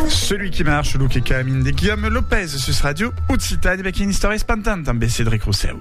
Celui qui marche, lo qui camine de Guillaume Lopez sus Radio Occitane avec une histoire espantante en Cédric Rousseau.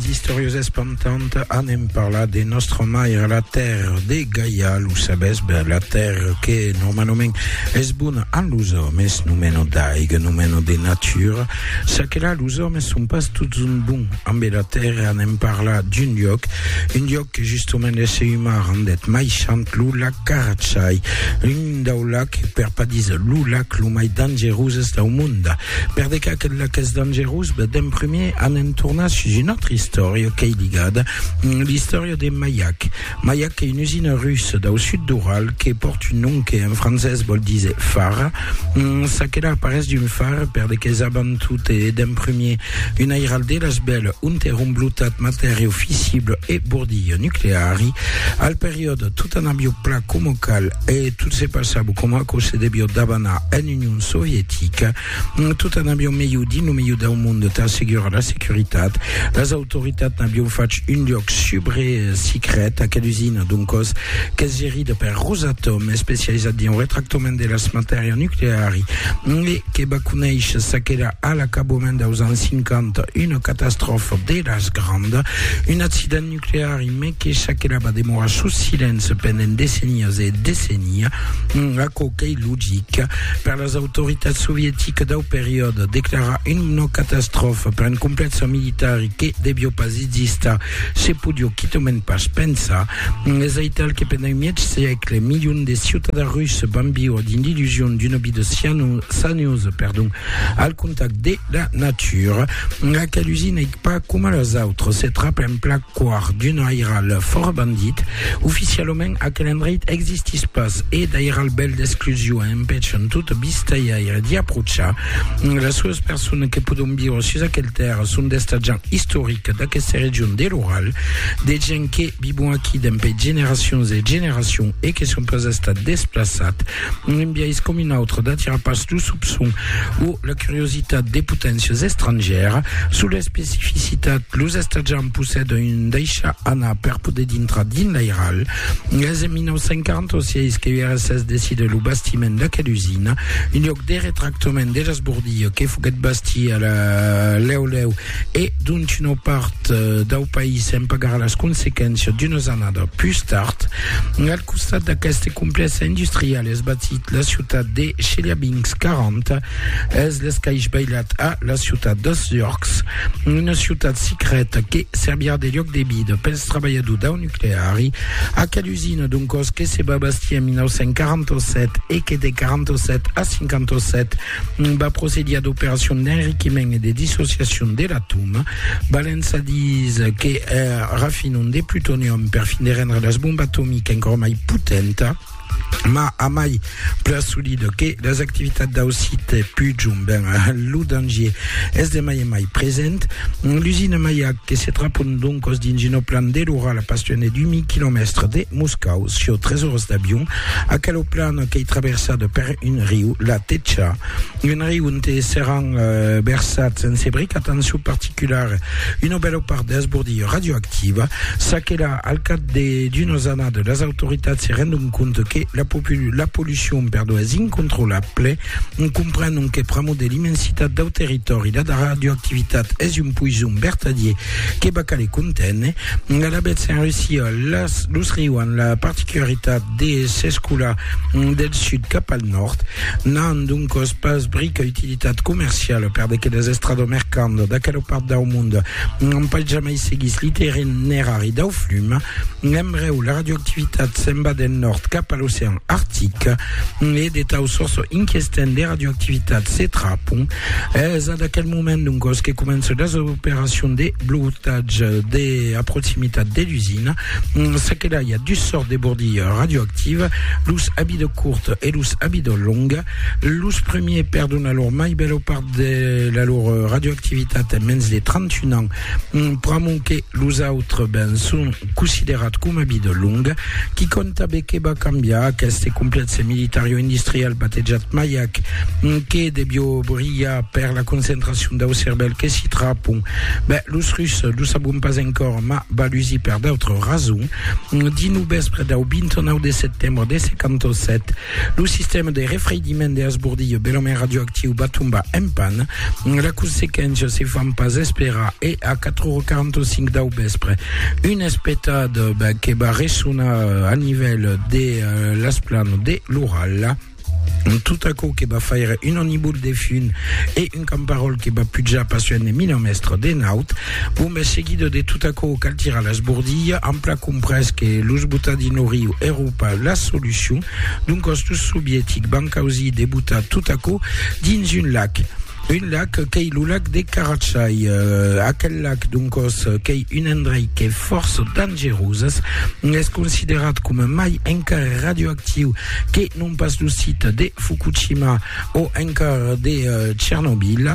Historios espantantes anem parlar de nostra mare, la terre de Gaia, lo sabes, ben, la terre que normalement es bona a los hommes, nomeno d'aiga, nomeno de natura, ça que là, los hommes sont pas tots un bon Amb era tèrra anem parlar d'un lloc, un lloc que justement l'èsser umà rendèt mai sant, lo lac Carachai, l'un dau lac, per pas dis lo lac, lo mai dangeroses dau monde. Per de qu'a quel lac es dangerós? Ben, d'en primier anem tornar sus una autra istòria qu'ei ligada, l'istòria de Mayak. Mayak qu'ei una usina russa dau sud d'Ural que pòrt un nom que en francés vòl díser far, ça que la aparés d'un far per de que's aban tot e d'en primier Un airal de las bèl ont èra un blotat matèri officible e bordilha nucleari. Al periòde, tot anabió pla coma cal e tot se passava com aquò se devió d'abanar en Union Sovietica. Tot anabió melhor dins lo melhor dau monde tà assegurar la securitat. Las autoritats n'avión fach un luòc subre sicret, aquela usina d'un còs qu'es gerida per Rosatom, especializat dins lo retractament de las matèria nucleari. que va conéisher ça qu'èra a l'acaboument deus ans 50 una catastròfa deras grandas, un accident nuclear e mai que ça qu'èra va demorar sus silenci pendent decennias e decennias, aquò qu'ei logic per las autoritats sovieticas dau periòde, declarar una catastròfa per un complèxe militari que devió pas existar Se podió quitament pas pensar, es aital que pendent un mièg sègle, milions de ciutadans russes van viure dins l'illusion d'una vida saniosa al contacte de la natura. Aquel usinèc, pas coma las autras, se trapa en plan còr d'un airal fòra bandit. Oficialament, aquel endreit existís pas e d'airal bèl d'exclusion empèchan tot vistajaire d'i apròchar. Las solas personas que pòdon viure sus aquel tèrra son d'estat gens. istorica d'aquesta region de l'Oral, de gents que vivon aquí dempè generacions e generacions e que son pas estat desplaçat, un biais com un autre d'atirar pas lo soupçon o la curiositat de poténcias estrangèras sus l'especificitat, los estatjants possèdan un daishar anar per poder dintrar dins l'airal. Es en 1946 que URSS decide lo bastiment d'aquela usina, un lloc de retractament Tomen de las Bourdilles, que foguèt bastir a la lèu lèu e dont una part dau país en pagarà las consequéncias d'unas annadas pus tard. Al costat d'aqueste complèxe industrial es batit la ciutat de Chelyabinsk, 40 es l'escaish bailat a la ciutat dels Llorcs, una ciutat secreta que servirà de lloc de vida pels trabalhadors dau nucleari. Usina d'un còs que se va bastir en 1947 e que de 47 a 57 va procedir a d'operacions d'enriquiment e de dissociacion de l'atòm. Valença dís que eh, rafinon de plutonium per fin de rendre las bombas atomiques encòra mai potenta, ma a mai Plan solida que las activitats dau site pujom ben a lo dangier es de mai en mai present. L'usina Mayac que se trapon doncos dins una plan de l'oral a pas lluènh d'un mi quilomèstre de Moscau, sieu tres oras d'avion. Aquela plana qu'ei traversada per un riu, la Techa, Un riu onte seràn versats en sebric, atencion particulara, una bèla part d'esbordilha radioactiva. Ça que la, al cap de d'unas annadas, las autoritats se rendon compte que la, la pollucion perdó, es incontrolable. Comprenon que pr'amor de l'immensitat dau territòri, la radioactivitat es un poison vertadier que va caler conténer. Alavetz, en Russia, las, los rius an la particularitat de s'escolar del sud cap al nòrd, n'an doncòs pas brica utilitat comerciala per de que las estrada mercanda d'aquela part dau monde n'an pas jamai seguís l'itinerari dau flum. En brèu, la radioactivitat se'n va del nòrd cap a l'ocean artic e de tau sòrç inquestent de radioactivitat se trapon. Es ad aquel moment doncòs que començan las operacions de blotatge a proximitat de l'usina. Se que la ya dus sort de bordi radioactiva, los abi de curt e los abi de long. Los premier perdon a lor mai belo part de la lor radioactivitat en mens de 31 ans, pr'amont que los autres ben son considerat com abi de long. Qui conta be que ba cambiar aqueste complexe militario-industrial batejat Mayak que debió brilhar per la concentracion dau cervèl que s'i trapon? Ben, los Russes lo sabon pas encor. ma balusi per d'autres rasons, dins lo vèspre dau 29 de setembre de 57, lo sistèma de refreidiment de Asbordillo belament radioactiu va tombar en pan. La consequéncia se fan pas esperar e a 4h45 dau vèspre, un espetat que va ressonar a nivèl de l'esplanada de l'Ural. Tot aquò que va faire un anibol de fun e un camparòl que va pujar pas un e mil mèstres de naut, bon ben seguido de tot aquò cal tirar l'esbordilha, an plan comprés que los botar dins lo riu èro pas la solucion, doncas los sovietic van causir de botar tot aquò dins un lac. Un lac qu'ei lo lac de Carachai. Euh, aquel lac, doncos, qu'ei un endrei que fòrç dangeroses. Es considerat coma mai encara radioactiu que non pas lo sit de Fukushima o encara de euh, Chernobyl.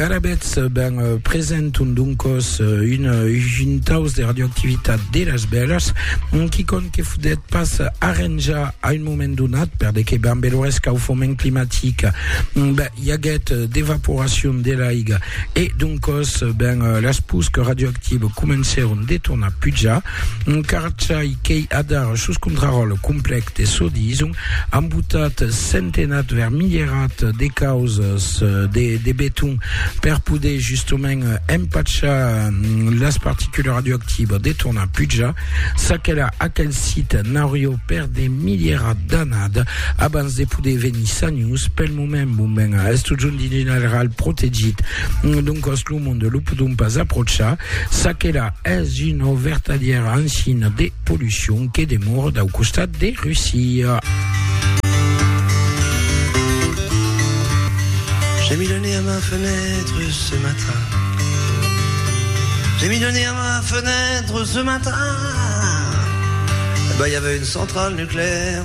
Arabets ben euh, presenton doncos euh, un, un taus de radioactivitat de las bèlas qui cont que fodet pas arranjar a un moment donat per de que ben belores cau foment climatic. Ben, i aguèt d'evaporacion de l'aiga e doncòs ben las pusques radioactives comencèron de tornar pujar encara çai qu'ei adara sus contraròtle complèc de çò dison an botat centenats vers milierats de causas de de beton per poder justament empachar las particules radioactives de tornar pujar ça que là aquel site n'aurió per de milierats d'annadas abans de poder venir sanhus pel moment moment a est totjorn dins un airalh protegit doncas lo monde lo podon pas aprochar çaquela es una vertadièra ancina de pollucion que demora dau costat de Russia. J'ai mis le nez à ma fenêtre ce matin J'ai mis le nez à ma fenêtre ce matin Eh ben y'avait une centrale nucléaire